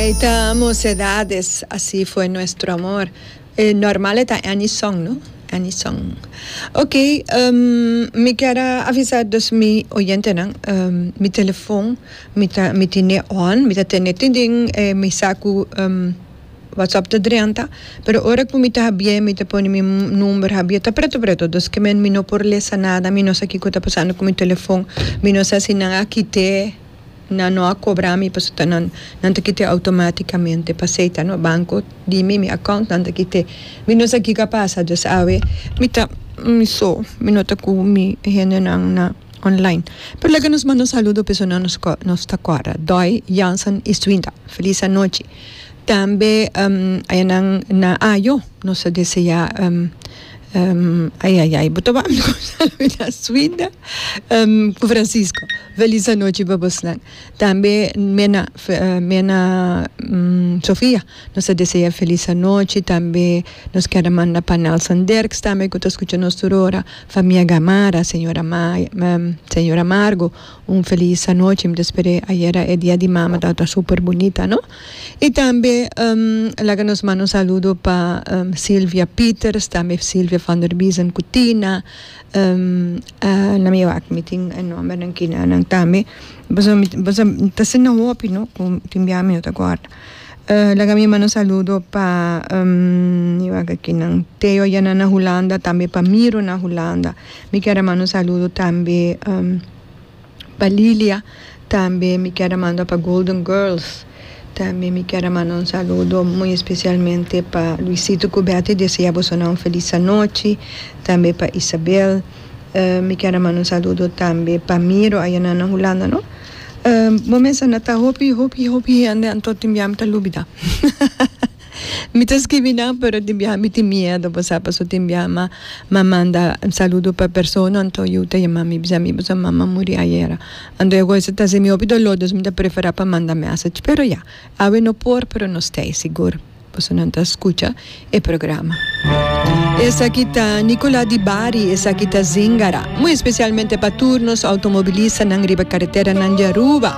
Ei ta mocedades, así fue nuestro amor E normal e ta any song no, any song Ok, mi kier a avisa dus mi oyentenan, mi telefon mi ta mi tine on mi ta tene tin den e mi sa cu WhatsApp ta drenta pero ora cu mi ta habié mi ta pone mi number habié ta preto preto dus ke men mi no por lesa nada mi no sa kico ta pasando cu mi telefon mi no sa si nan a kite. Nan no a cobra mi pasobra ta nan, nan ta kite automaticamente pasey ta no banco di mi, mi account nan ta kite, mi no sa kico a pasa dus awe mi ta mi so, mi no ta cu mi hende nan na online. Pero laga nos manda un saludo pa esun nos cu nos ta cuadra, Doy, Janson y Suinda, feliz anochi, tambe aya nan na ayo nos ta desea. Ehm, ai ai ai, bo ta wak mi ku Salvina Suinda, ehm, ku Francisco. Felis anochi pa bosnan. Tambe Mena, Fe- eh, Mena mm, Sofia, nos ta desea felis anochi. Tambe nos keda manda pa Nelson Derks tambe ku ta skucha nos tur ora. Famia Gamarra, señora Mai, ehm, señora Margo, un felis anochi. Mi ta spere, ayera e Dia di Mama tabata super bunita, no? Y tambe laga nos manda un saludo pa Silvia Pieters, tambe Silvia van der Biesen cu Tina, na mi wak mi tin e nombernan kina nan tambe, boso boso ta ser nan hopi no cu tin bia mi no ta guarda. Laga mi manda un saludo pa mi wak aki nan Theo Yanan na Hulanda, tambe pa Miro na Hulanda, mi kier a manda un saludo tambe Pa Lilia tambe mi kier a manda pa Golden Girls tambe mi kier a manda un saludo muy especialmente pa Luisito cu Betty desea bosonan un feliz anochi tambe pa Isabel mi kier a manda un saludo tambe pa Miro ayina na Hulanda no bo mester na ta hopi hopi hopi hende anto tin bia mi ta lubida. Mi ta skibi nan pero tin biaha mi tin miedo bosa paso tin biaha ma ma manda saludo pa personanan to yu ta yama mi bisa mi boso mama muri ayera anto ya ku esa ta simi hopi dolor dus mi ta prefera pa manda message pero ya awe no por pero no stay sigur boso nan ta skucha e programa. Esaki ta Nicola di Bari esaki ta Zingara muy especialmente pa tur nos automobilistanan riba carreteranan di Aruba.